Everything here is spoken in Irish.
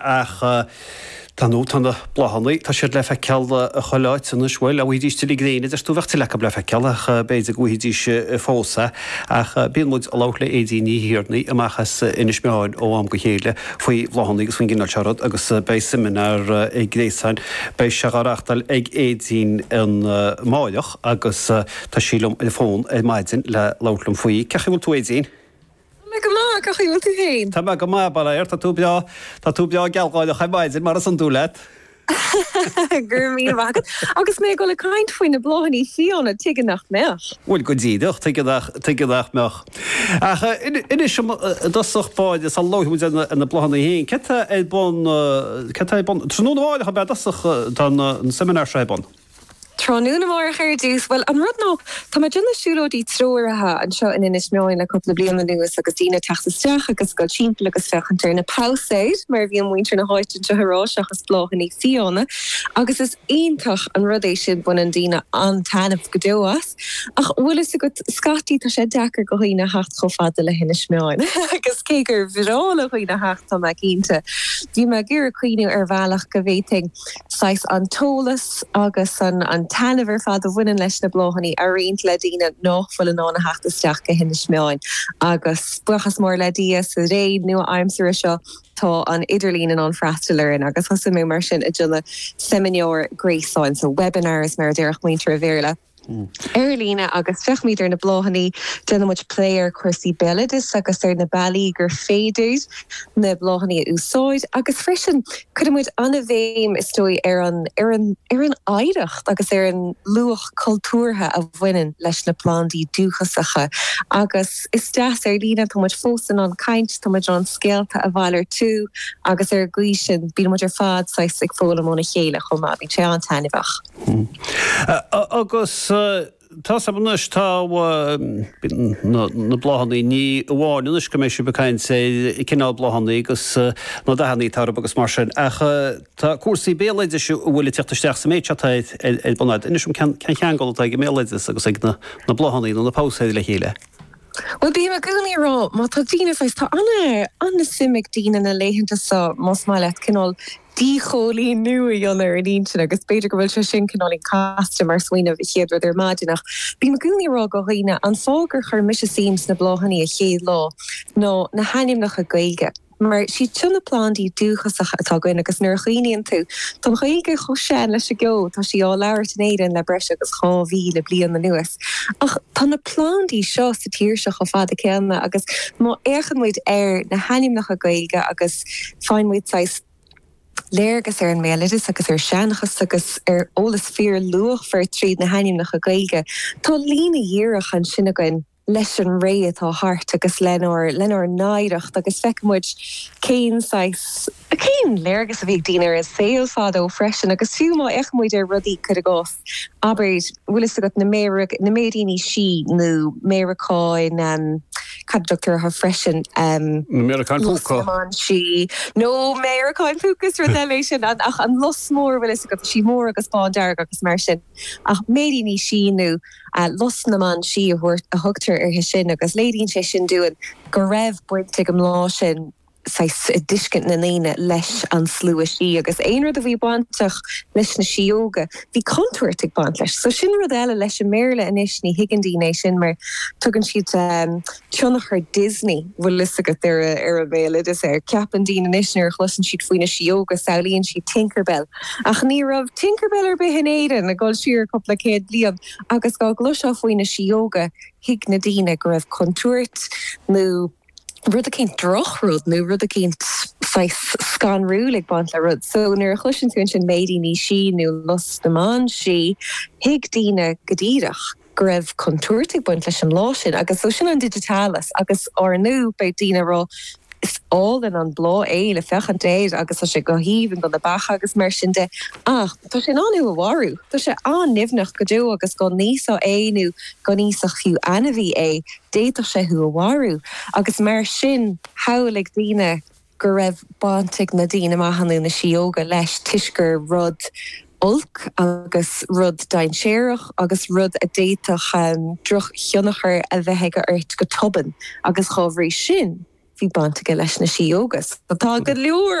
ach tá na, tá na bláthanna, tá siad le feiceáil chuile áit anois, bhuel, dá bhfaighidís tuilleadh gréine, deir tú, bheadh tuilleadh acu le feiceáil ach b'fhéidir go bhfaighidís fós é. Ach bíonn muid ag labhairt le Aedín Ní Thiarnaigh amach as Inis Meáin ó am go chéile faoi bhláthanna agus faoin gcineál seo rud agus beidh seimineár gréasáin, beidh sé á reáchtáil ag Aedín amárach agus tá sí liom ar an bhfón ar maidin le labhairt liom faoi. Cén chaoi a bhfuil tú, Aedín? Tá mé go maith, cén chaoi a bhfuil tú féin? Tá mé go maith, by dad, tá tú breá, tá tú breá gealgháireach ar maidin, mar is iondúil leat. Go raibh míle maith agat. Agus mé ag dul ag caint faoi na bláthannaí fiáine, tuige nach mbeadh? Bhuel, go díreach, tuige nach, tuige nach mbeadh? Ach anois, i dtosach báire, sula labhraíonn muid ar na bláthannaí féin, céard tá ar bun, céard tá ar bun, tráthnóna amárach, ab ea, i dtosach, tá an seimineár seo ar bun? Tráthnóna amárach ar dtús. Bhuel, an rud ná, tá mé ag déanamh siúlóidí treoraithe anseo in Inis Meáin le cúpla bliain anuas agus daoine ag teacht isteach agus ag dul timpeall agus féachaint ar na pabhsaeir, mar a bhíonn muintir na háite anseo ag rá, seachas bláthannaí fiáine, agus is iontach an rud é sin, baineann daoine an-taitneamh go deo as. Ach, bhfuil fhios agat, scaití tá sé deacair go dhaoine theacht chomh fada le hInis Meáin agus cé gur bhreá le dhaoine theacht, tá mé cinnte, bhí mé ag iarraidh cuimhniú ar bhealach go bhféadfainn. saghas an t-eolas agus an taitneamh ar fad a bhaineann leis na bláthannaí a roinnt le daoine nách bhfuil in ann a theacht isteach go hInis Meáin. Agus buíochas mór le Dia, sa ré nua-aimsire seo, tá an idirlíon in ann freastal orainn agus thosaigh mé mar sin ag déanamh seimineár gréasáin, so webinars mar a déarfadh muintir an Bhéarla. ar líne agus féachaimid ar na bláthannaí. Déanaimid plé ar chúrsaí béaloidis agus ar na bealaí gur féidir na bláthannaí a úsáid agus freisin cuirimid an-bhéim is dóigh ar an ar an oidhreacht agus ar an luach cultúrtha a bhaineann leis na plandaí dúchasacha agus is deas ar líne. Táimid fós in ann caint, táimid in ann scéalta a mhalartú agus ar an gcaoi sin bíonn muid ar fad saghas ag foghlaim óna chéile chomh maith, bíonn sé an-taitneamhach. Hm. Agus tá's agam anois, tá na bláthannaí, ní amháin anois go mbeidh sibh ag caint ar chineál bláthannaí agus na dathannaí atá orthu agus mar sin, ach tá cúrsaí béaloidis an bhfuil, ag tíocht isteach sa méid seo atá ar bun agat. Inis dom, cén ceangal atá ag an mbéaloideas agus ag na bláthannaí nó na pabhsaeir le chéile? Bhuel, bím i gcónaí ag rá, má tá daoine, saghas, tá an-suim ag daoine na laethanta seo, más maith leat, cineál díchoilíniú a dhéanamh ar an intinn agus b'fhéidir go bhfuil sé sin cineál casta mar smaoineamh, an chéad rud ar maidin ach bím i gcónaí ag rá go dhaoine, an fáth gur chuir mise suim sna bláthannaí a chéad lá ná na hainmneacha Gaeilge mar is iad seo na plandaí dúchasacha atá againn agus nuair a chuimhníonn tú, tá an Ghaeilge chomh sean leis an gceo, tá sí á labhairt in Éirinn le breis agus 2000 bliain anuas ach tá na plandaí seo sa tír seo chomh fada céanna agus má fhéachann muid ar na hainmneacha Gaeilge agus Faigheann muid saghas léargas ar an mbéaloideas agus ar sheanchas agus ar eolas fíor luachmhar tríd na hainmneacha Gaeilge. Tá líne dhíreach ansin againn leis an ré atá thart agus lenár lenár n-oidhreacht agus feiceann muid cén saghas, cén léargas a bhí ag daoine ar an saol fadó freisin agus fiú má fhéachann muid ar rudaí, cuir i gcás. Abair, bhfuil fhios agat, na, na Méiríní Sí nó Méaracáin, ehm, céard a thugtar orthu freisin, ehm. Na Méaracáin Púca. Lus na mBan Sí nó Méaracáin Púca sin rud eile é sin an, ach an lus mór, bhfuil fhios agat, sí mór agus bándearg agus mar sin. Ach Méiríní Sí nó eh Lus na mBan Sí a thabhairt, a thugtar uirthi sin agus léiríonn sé sin dúinn go raibh baint ag an mbláth sin, saghas i dtuiscint na ndaoine leis an slua sí agus aon rud a bhí bainteach leis na síóga bhí contúirt ag baint leis so sin rud eile leis an mBéarla anois ní thuigeann daoine é sin mar tugann siad tionchar Disney bhfuil fhios agat ar an mbéaloideas air ceapann daoine anois nuair a chloiseann siad faoi na síóga samhlaíonn siad Tinkerbell ach ní raibh Tinkerbell ar bith in Éirinn ag dul siar cúpla céad bliain agus dá gcloisfeá faoi na síóga thuig na daoine go raibh contúirt nó rud eicínt, drochrud nó rud eicínt saghas scanrúil ag baint le rud. So nuair a chloiseann tú ansin Méiríní Sí nó Lus na mBan Sí, thuig daoine go díreach go raibh contúirt ag baint leis an mbláth sin agus so sin an digitalis agus ar ndóigh beidh daoine ag rá is álainn an bláth é le féachaint air agus tá sé go haoibhinn do na beacha agus mar sin de ach tá sé in ann thú a mharú, tá sé an-nimhneach go deo agus dá n-íosfá é nó dá n-íosfadh fiú ainmhí é. d'fhéadfadh sé thú a mharú agus mar sin shamhlaigh daoine go raibh baint ag na daoine maithe nó na síóga leis toisc gur rud olc agus rud dainséarach agus rud a d'fhéadfadh drochthionchar a bheith aige ort go tobann agus dá bhrí sin bhí baint aige leis na síóga. Tá go leor.